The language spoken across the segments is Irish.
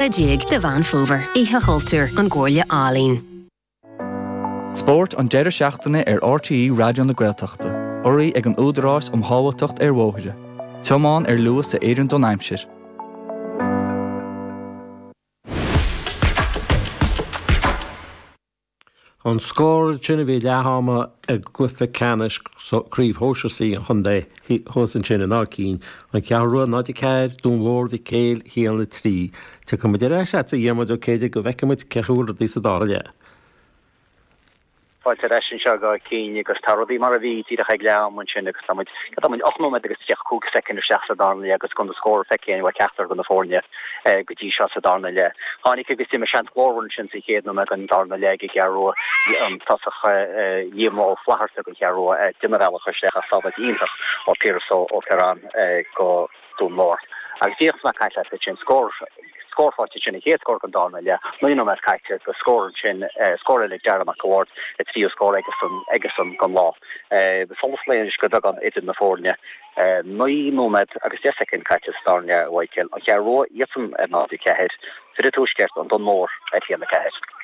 déag de Mheán Fómhair, Oíche Chultúir, ón gComhairle Ealaíon. Spórt an deireadh seachtaine ar RTÉ Raidió na Gaeltachta. Urraithe ag an Údarás um Shábháilteacht ar Bhóithre. Tiomáin ar luas a oireann don aimsir. An scór sin a bhí leath ama i gcluiche ceannais Craobh Shóisir C an chontae thuas ansin in Áth Cinn, An Cheathrú Rua 0, 4, Dún Mór Mhic Éil 1, 3. Tiocfaidh muid ar ais leatsa a Dhiarmuid Ó Céidigh go bhfeicfidh muid cén chaoi a bhfuil rudaí sa dara leath. Fáilte ar ais anseo ag Áth Cinn agus tá rudaí mar a bhí díreach ag leath ama ansin agus tá muid, cad tá muid, ocht nóiméad agus tríocha cúig soicind isteach sa dara leath agus gan aon scór feicthe ag ceachtar de na foirne. go dtí seo sa darna leath. Tháinig agus d'imigh seans glórmhar ansin sa chéad nóiméad den darna leath ag an gCeathrú Rua. Bhí an tosaí Liam Ó Flaithearta don Cheathrú Rua ag déanamh a bhealach isteach ach sábháil iontach ó Piaras Ó Ferran do Dún Mór agus díreach is mé ag caint ansin. Scór scóráilte sin an chéad scór den darna leath. Naoi nóiméad caite agus scór ansin, scór eile ag Darragh Mac a' Bhaird, an tríú scór aigesan don lá. Solas lae anois go beagán idir na foirne. Naoi nóiméad agus deich soicind caite sa dara leath i Whitehale, An Cheathrú Rua, iadsan ar 0-4, fir Tuaisceart, An Dún Mór, ar 1-4.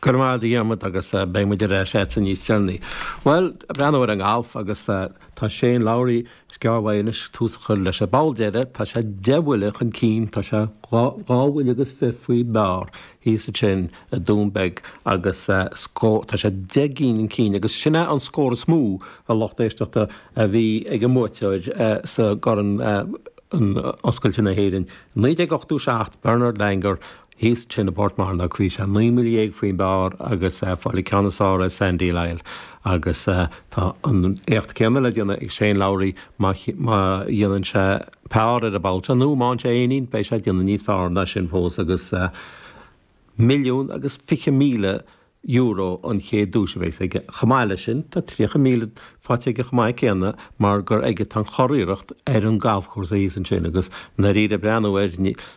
Go raibh maith agat a Dhiarmaid agus beidh muid ar ais a'dsa níos deireanaí. Bhuel, ag breathnú ar an ngalf agus tá Shane Lowry, is gearr uaidh anois tús a chur leis an bpoll deireadh, tá sé deich mbuille chun cinn, tá sé dhá bhuille agus fiche faoin bpar thíos ansin. in Doonbeg agus tá sé deich gcinn chun cinn agus sin é an scór is mó a lucht éisteachta a bhí ag an mbuaiteoir sa gCorn Oscailte na hÉireann 1987 Bernard Langer thíos ansin i bPort Mearnóg bhí sé naoi mbuille déag faoin bpar agus fáil an ceann is fearr ar Sandy Lyle agus tá an t-éacht céanna le déanamh ag Shane Lowry má dhéanann sé par ar an bpoll deireadh nó má fhaigheann sé éinín beidh sé ag déanamh níos fearr ná sin fós agus. Milliún agus fiche míle euro an chéad duais a bheas aige. Chomh maith leis sin tá tríocha míle faighte aige chomh maith céanna mar gur aige atá an churiarracht ar an galfchúrsa thíos ansin agus i ndáiríre ag breathnú air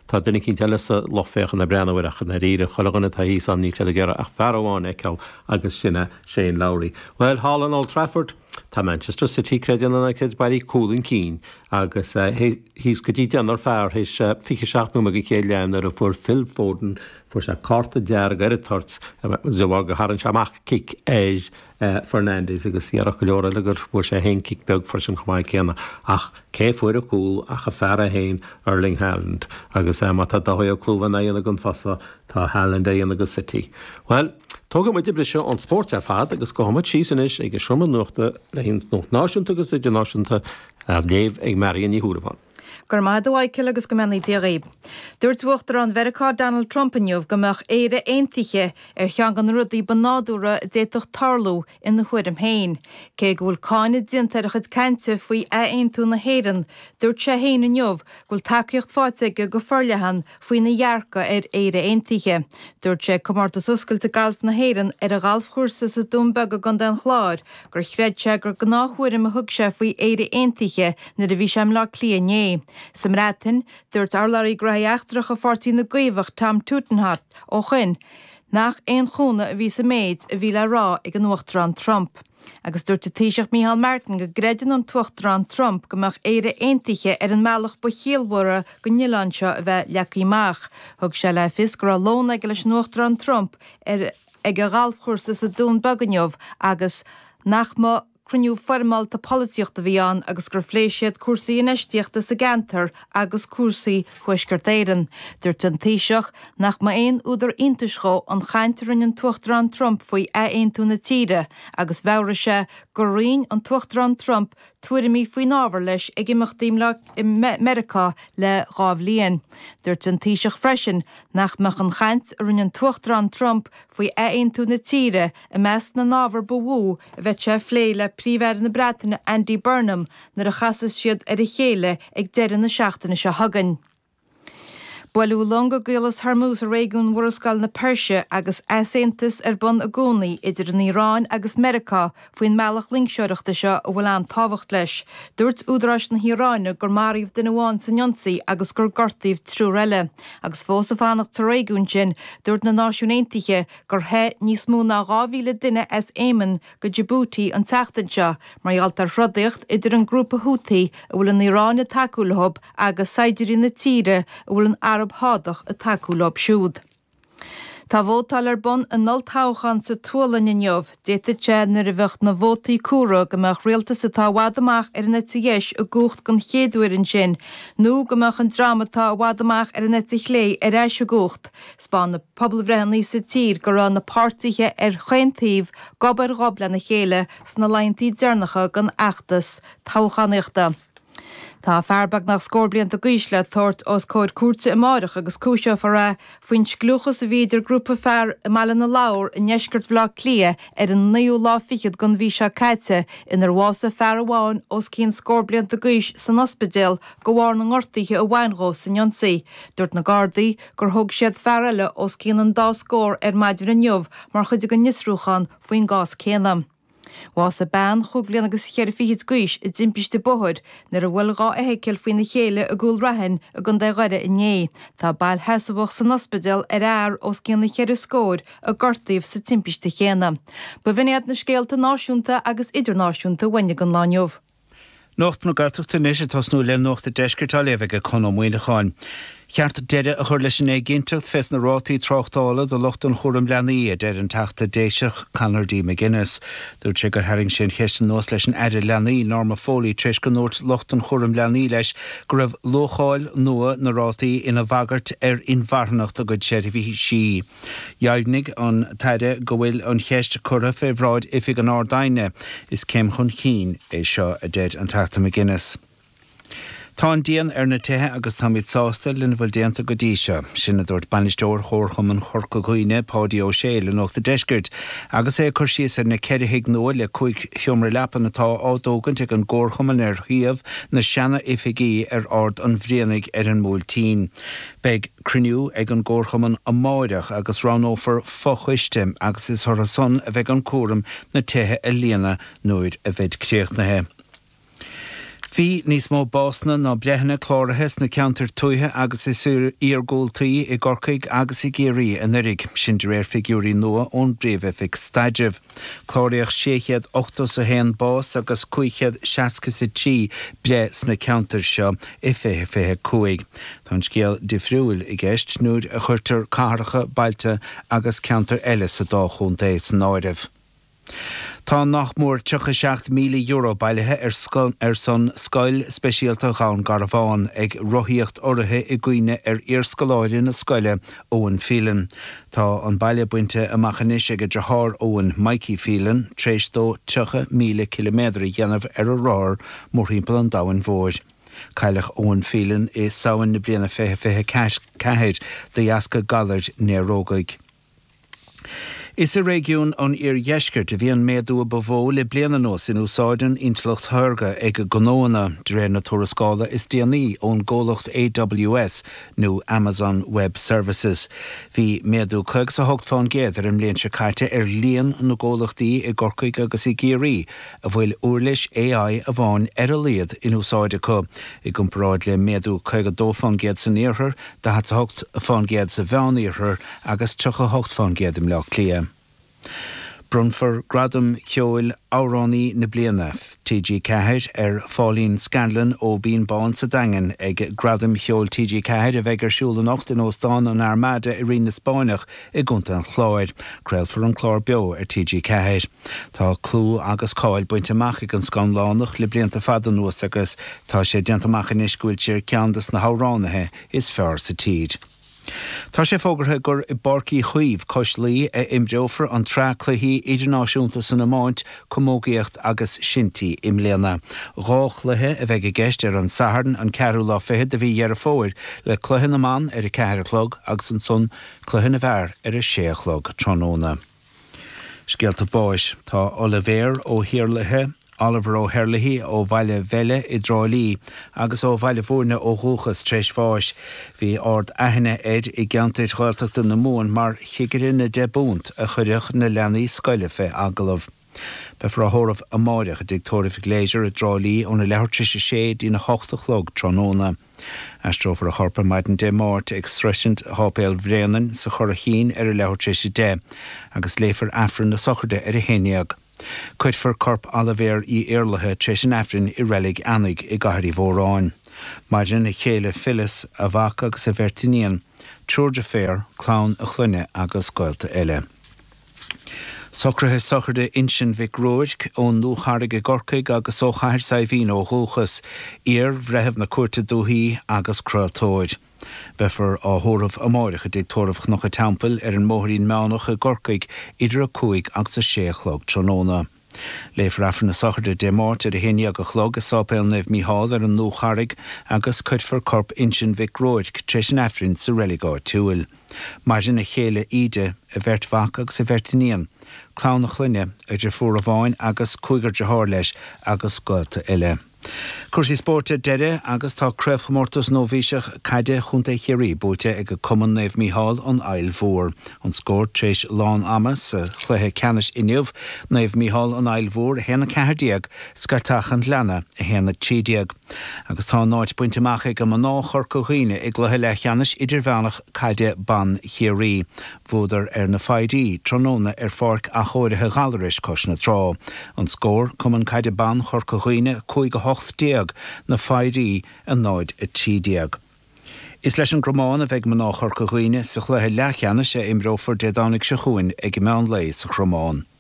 tá duine eicínt eile sa lucht féachana ag breathnú air ach i ndáiríre chuile dhuine atá thíos ann níl siad ag iarraidh ach fear amháin a fheiceáil agus sin é Shane Lowry. Bhuel thall in Old Trafford Tá Manchester City, creid é nó ná creid, bailithe cúl chun cinn agus thíos go dtí deichniúr fear théis 27 nóiméad den chéad leath nuair a fuair Phil Foden, fuair sé cárta dearg ar an toirt de bharr gur tharraing sé amach cic ar Fernandes agus déarfadh go leor leat gur bhuail sé féin cic beag freisin chomh maith céanna. Ach cé fuair cúl ach an fear é féin, Erling Haaland, agus má tá Doherty ag clúmh an oighinn agam fosta, tá Haaland á dhéanamh do City. Bhuel! Tógfaidh muid briseadh ón spórt ar fad agus gabhfaidh muid síos anois ag an seomra nuachta le haghaidh nuacht náisiúnta agus idirnáisiúnta á léamh ag Marion Ní Shúilleabháin. Go raibh maith agat, a Mhichael, agus go mbeannaí Dia dhaoibh. Dúirt Uachtarán Mheiriceá Donald Trump inniu go mbeadh Éire aontaithe ar cheann de na rudaí ba nádúrtha a d'fhéadfadh tarlú Ina thuairim féin, cé go bhfuil cáineadh déanta ar a chuid cainte faoi ath-aontú na hÉireann, dúirt sé féin inniu go bhfuil tacaíocht faighte aige go forleathan faoina dhearcadh ar Éire Aontaithe. Dúirt sé ag Comórtas Oscailte Gailf na hÉireann ar a ghalfchúrsa sa Dún Beag i gContae an Chláir gur chreid sé gur gnáth-thuairim a thug sé faoi Éire Aontaithe nuair a bhí sé i mBleá Cliath inné. Sa mBreatain, dúirt urlabhraí gnóthaí eachtracha Pháirtí na gCaomhach Tom Tugendhat ó shoin, Nach aon chúnamh a bhí sa méid a bhí le rá ag an Uachtarán Trump. Agus dúirt an Taoiseach Micheál Martin go gcreideann an tUachtarán Trump go mbeadh Éire aontaithe ar an mbealach ba chiallmhara dhon oileán seo a bheith leagtha amach. Thug sé le fios go raibh lón aige leis an Uachtarán Trump ag a ghalfchúrsa sa Dún Beag inniu agus nach mba Cruinniú foirmeálta polaitíochta a bhí ann agus gur phléigh siad cúrsaí infheistíochta sa gceantar agus cúrsaí Thuaisceart Éireann. Dúirt an Taoiseach nach mba aon údar iontais dhó an chaint a rinne an tUachtarán Trump faoi ath-aontú na tíre agus mheabhraigh sé gur roinn an tUachtarán Trump tuairimí faoin ábhar leis ag imeachtaí i Meiriceá le dhá bhliain. Dúirt an Taoiseach freisin nach mbeadh an chaint a rinne an tUachtarán Trump faoi ath-aontú na tíre I measc na n-ábhar ba mhó a bheadh sé a phlé le Príomh-Aire na Breataine Andy Burnham nuair a chasfas siad ar a chéile ag deireadh na seachtaine seo chugainn. Buaileadh long i gCaolas Hormuz i réigiún Mhurascaill na Peirse agus easaontas ar bun i gcónaí idir an Iaráin agus Meiriceá faoin mbealach loingseoireachta seo a bhfuil an-tábhacht leis. Dúirt údaráis na hIaráine gur maraíodh duine amháin san ionsaí agus gur gortaíodh triúr eile, agus fós ag fanacht sa réigiún sin, dúirt na Náisiúin Aontaithe gur theith níos mó ná 2,000 duine as Éimin go Djibouti an tseachtain seo mar gheall ar throdaíocht idir an grúpa Houthi a bhfuil an Iaráin ag tacú leo agus saighdiúirí na tíre a bhfuil an Araib Shádach ag tacú leo siúd. Tá vótáil ar bun in olltoghchán sa tSualainn inniu. D'fhéadfadh sé, nuair a bheadh na vótaí comhairthe, go mbeadh rialtas atá i bhfad amach ar an eite dheis i gcumhacht den chéad uair ansin, nó go mbeadh an dream atá i bhfad amach ar an eite chlé ar ais i gcumhacht. 'Spáin na pobalbhreitheanna sa tír go raibh na páirtithe ar chaon taobh gob ar ghob lena chéile sna laethanta deireanacha den fheachtas toghchánaíochta. Tá fear beagnach scór blianta d'aois le tabhairt os comhair cúirte amáireach agus cúiseofar é faoin scliúchas a bhí idir grúpa fear i mBaile na Lobhar i ndeisceart Bhleá Cliath ar an naoú lá fichead den mhí seo caite inar bhásaigh fear amháin os cionn scór blianta d'aois san ospidéal de bharr na ngortaíthe a bhain dhó san ionsaí. Dúirt na Gardaí gur thóg siad fear eile os cionn an dá scór ar maidin inniu mar chuid den fhiosrúchán faoin gcás céanna. Bhásaigh bean chúig bhliain agus cheithre fichid d'aois i dtimpiste bóthair nuair a bhuail dhá fheithicil faoina chéile i gCúil Raithin i gContae Dhoire inné. Tá bail sheasamhach san ospidéal ar fhear os cionn na ceithre scóir a gortaíodh sa timpiste chéanna. B'in iad na scéalta náisiúnta agus idirnáisiúnta a bhain don lá inniu. Nuacht na Gaeltachta anois ag tosnú le Nuacht a' Deiscirt á léamh ag Conn Ó Muíneacháin. Ba cheart deireadh a chur leis an éiginnteacht fés na rátaí tráchtála do lucht an chúraim leanaí, a deir an Teachta Déiseach Conor D. McGuinness. Dúirt sé gur tharraing sé an cheist anuas leis an Aire Leanaí, Norma Foley tar éis go ndúirt lucht an chúraim leanaí leis go raibh luacháil nua na rátaí ina bhagairt ar inmharthanacht a gcuid seirbhísí. Dheimhnigh an tAire go bhfuil an cheist curtha fé bhráid Oifig an Ard-Aighne. Is céim chun cinn é seo, a deir an Teachta McGuinness. Tá an díon ar na tithe agus táimid sásta lena bhfuil déanta go dtí seo. Sin a dúirt Bainisteoir Chomharchumann Chorca Dhuibhne, Páidí Ó Sé le Nuacht an Deiscirt agus é ag cur síos ar na ceithre thigh nua le cúig sheomra leapan atá á dtógaint ag an gComharchumann ar shuíomh na seana-oifigí ar Ard an Bhrianaigh ar an mBuailtín. Beidh cruinniú ag an gComharchumann amáireach agus roghnófar fo-choiste agus is ortha san a bheidh an cúram na tithe a líonadh nuair a bheid críochnaithe. Bhí níos mó básanna ná breitheanna cláraithe sna ceantair tuaithe agus is iargúltaí i gCorcaigh agus i gCiarraí anuiridh, sin de réir figiúirí nua ón bPríomh-Oifig Staidrimh. Cláraíodh 681 bás agus 563 breith sna ceantair seo i 2025. Tá an scéal difriúil i gceist nuair a chuirtear cathracha, bailte agus ceantair eile sa dá chontae san áireamh. Tá nach mór €37,000 bailithe ar son Scoil Speisialta Dhún Garbhán ag rothaíocht urraithe i gcuimhne ar iarscoláire na scoile Eoin Phelan. Tá an baile bainte amach anois ag a dhriotháir Eoin, Mikey Phelan, tréis dó 30,000 ciliméadar a dhéanamh ar a rothar mórthimpeall an domhain mhóir. Cailleadh Eoin Phelan i Samhain na bliana 2024 de dheasca galair néarógaigh. Is i réigiún an iardheiscirt a bhí an méadú a ba mhó le bliain anuas in úsáid na hintleachta saorga ag gnóanna, de réir na tuarascála is déanaí ón gcomhlacht AWS nó Amazon Web Services. Bhí méadú caoga 's a hocht fán gcéad ar an mbliain seo caite ar líon na gcomhlachtaí i gCorcaigh agus i gCiarraí a bhfuil uirlis AI amháin ar a laghad in úsáid acu, i gcomparáid le méadú caoga a dó fán gcéad san iarthar, 48% sa Mheán-Iarthar agus 38% i mBleá Cliath. Bronnfar Gradam Ceoil Amhránaí na Bliana TG4 ar Phauline Scanlon ó Bhinn Bán sa Daingean ag Gradaim Cheoil TG4 a bheidh ar siúl anocht in Óstán an Armada i Rinn na Spáinneach, i gContae an Chláir. Craolfar an clár beo ar TG4. Tá clú agus cáil bainte amach ag an Scanlánach le blianta fada anuas agus tá sé déanta amach anois go bhfuil sí ar cheann de na hamhránaithe is fearr sa tír. Tá sé fógartha gur i bPáirc Uí Chaoimh cois Laoi a imreofar an tsraith cluichí idirnáisiúnta san iomáint, camógaíocht agus shinty i mbliana. Dhá chluiche a bheidh i gceist ar an Satharn an ceathrú lá fichead de mhí Dheireadh Fómhair le cluiche na mban ar a ceathair a chlog agus ansan Cluiche na bhFear ar a sé a chlog tráthnóna. Scéalta báis. Tá Oilibhéar Ó hIarlaithe, Oliver O'Herlihy, ó Bhaile Bheille i dTrá Lí agus ó Bhaile Bhúirne ó dhúchas, tar éis bháis. Bhí ard aithne air i gceantair Ghaeltachta na Mumhan mar chigire na ndeich bpunt a chuireadh na leanaí scoile fé agallamh. Beifear á thórramh amáireach i dTigh Tórraimh Gleasure i dTrá Lí óna leathuair tar éis a sé dtí'n a hocht a chlog tráthnóna. Aistreofar a chorp ar maidin Dé Máirt ag sroisint Sháipéal Bhréanainn sa Churraichín ar a leathuair tar éis a deich agus léifear Aifreann na Sochraide ar a haon dhéag. Cuirfear corp Oilibhéir Uí Iarlaithe tar éis an Aifrinn i Reilig Eanaigh i gCathair Uí Mhóráin. Maireann a chéile Phyllis, a mhac agus a bheirt iníon, triúr deirféar, clann a clainne agus gaolta eile. Socruithe Sochraide Uinsinn Mhic Ruairc, ón nDúcharraig i gCorcaigh agus ó Chathair Saidhbhín ó dhúchas, iar-bhreitheamh na Cúirte Dúiche agus craoltóir. Beifear á thórramh amáireach i dTigh Tórraimh Chnoc a' Teampaill ar an mBóithrín Manach i gCorcaigh idir a cúig agus a sé a chlog tráthnóna. Léifear Aifreann na Sochraide Dé Máirt ar a haon dhéag a chlog i Sáipéal Naomh Mícheál ar an nDúcharraig agus cuirfear corp Uinsinn Mhic Ruairc tar éis an Aifrinn sa reilig áitiúil. Maireann a chéile Íde, a bheirt mhac agus a bheirt iníon, clann a chlainne, deirfiúr amháin agus cúigear deartháir leis agus gaolta eile. Cúrsaí spóirt ar deireadh agus tá Craobhchomórtas Nóibhíseach Caide Chontae Chiarraí buaite ag Cumann Naomh Mícheál, An Fhaill Mhór. An scór tar éis lán ama sa chluiche ceannais inniu, Naomh Mícheál, An Fhaill Mhór 1, 14, Scairteach an Ghlinne 1, 13. Agus tá a n-áit bainte amach ag mná Chorca Dhuibhne i gcluiche leathcheannais idirmheánach caide ban Chiarraí. Bhuadar ar Na Fairies tráthnóna ar pháirc athchóirithe Ghallarais cois na trá. An scór, Cumann Caide Ban Chorca Dhuibhne 5-18, Na Fairies 0-13. Is leis an gCromán a bheidh mná Chorca Dhuibhne sa chluiche leathcheannais a imreofar Dé Domhnaigh seo chugainn ag meán lae sa Chromán.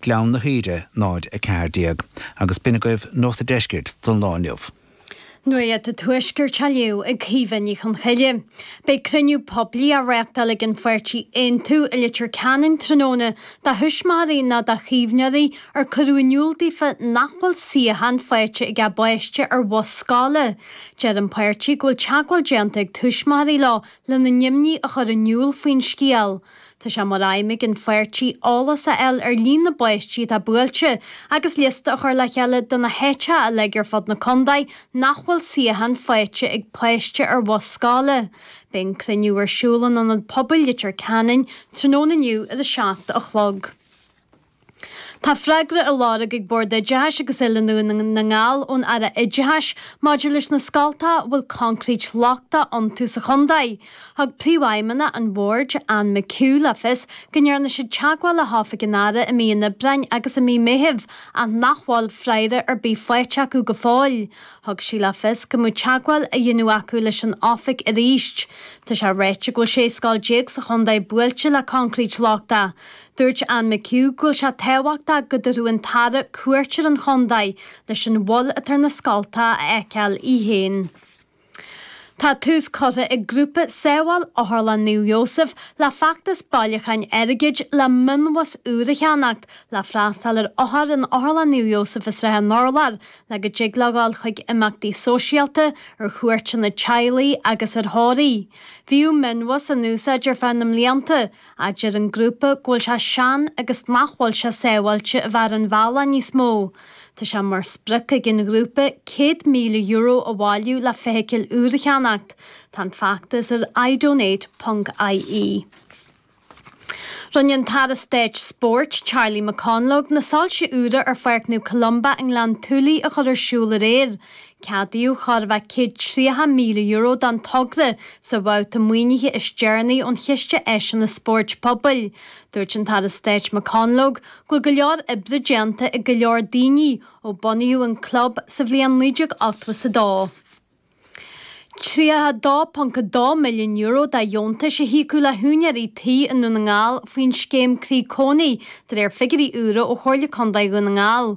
Gleann na hUidhre 0, 14, agus b'in agaibh Nuacht a' Deiscirt don lá inniu. Nuacht a' Tuaiscirt á léamh ag Caoimhe Ní Chonghaile. Beidh cruinniú poiblí á reáchtáil ag an pháirtí Aontú i Leitir Ceanainn tráthnóna do thuismitheoirí nó do chaomhnóirí ar cuireadh in iúl daofa nach bhfuil suíochán faighte ag a bpáiste ar bhus scoile. Deir an páirtí go bhfuil teagmháil déanta ag tuismitheoirí leo lena n-imní a chur in iúl faoin scéal. Tá sé mar aidhm ag an pháirtí eolas a fháil ar líon na bpáistí atá buailte agus liosta a chur le chéile de na háiteacha uilig ar fud na contae nach bhfuil suíochán faighte ag páiste ar bhus scoile. Beidh an cruinniú ar siúl in Ionad Pobail Leitir Ceanainn tráthnóna inniu ar a seacht a chlog. Tá freagra á lorg ag Bord Oideachais agus Oiliúna Dhún na nGall ón Aire Oideachais maidir leis na scoltacha a bhfuil coincréit lochtach iontu sa chontae. Thug Príomhfheidhmeannach an Bhoird, Anne McHugh le fios go ndearna siad teagmháil le hOifig an Aire i mí an Aibreáin agus i mí Meithimh ach nach bhfuil freagra ar bith faighte acu go fóill. Thug sí le fios go mbeidh teagmháil á déanamh acu leis an Oifig arís. Tá sé ráite go bhfuil 16 scoil sa chontae buailte le coincréit lochtach. Dúirt Anne McHugh go bhfuil sé tábhachtach go dtabharfadh an tAire cuairt ar an chontae leis an bhail atá ar na scoltacha a fheiceáil í féin. Tá tús curtha ag grúpa Sábháil Otharlann Naomh Iósaef le feachtas bailiúcháin airgid le mionbhus úr a cheannacht le freastal ar othair in Otharlann Naomh Iósaef i Srath an Urláir le go dtig leo dul chuig imeachtaí sóisialta, ar chuairteanna teaghlaigh agus ar thórraimh. Bhíodh mionbhus in úsáid ar feadh na mblianta, ach deir an grúpa go bhfuil sé sean agus nach bhfuil sé sábháilte a bheith ar an bhealach níos mó. Tá sé mar sprioc ag an ghrúpa €100,000 a bhailiú le feithicil úr a cheannacht. Tá an feachtas ar idonate ponc ie. Rinne an tAire Stáit Spóirt, Charlie McConalogue, na soilse úra ar Pháirc Naomh Columba i nGleann tSúilí a chur ar siúl aréir. Ceadaíodh thar a bheith €130,000 don togra sa bhabhta maoinithe is deireanaí ón Chiste Áiseanna Spóirt Pobail. Dúirt an tAire Stáit McConalogue go bhfuil go leor oibre déanta ag go leor daoine ó bunaíodh an club sa bhliain 1982. €32.2 milliún de dheontais a híocadh le húinéirí tí i nDún na nGall faoin scéim Croí Cónaí, de réir figiúirí úra ó Chomhairle Contae Dhún na nGall.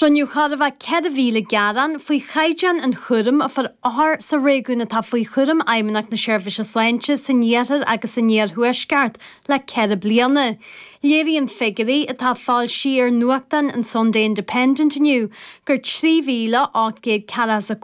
Rinneadh corradh le 4,000 gearán faoi chaighdeán an chúraim a fuair othar sa réigiún atá faoi chúram Fheidhmeannacht na Seirbhíse Sláinte san Iarthar agus san Iarthuaisceart le ceithre bliana. Léiríonn figiúirí atá foilsithe ar nuachtán an Sunday Independent inniu gur 3,840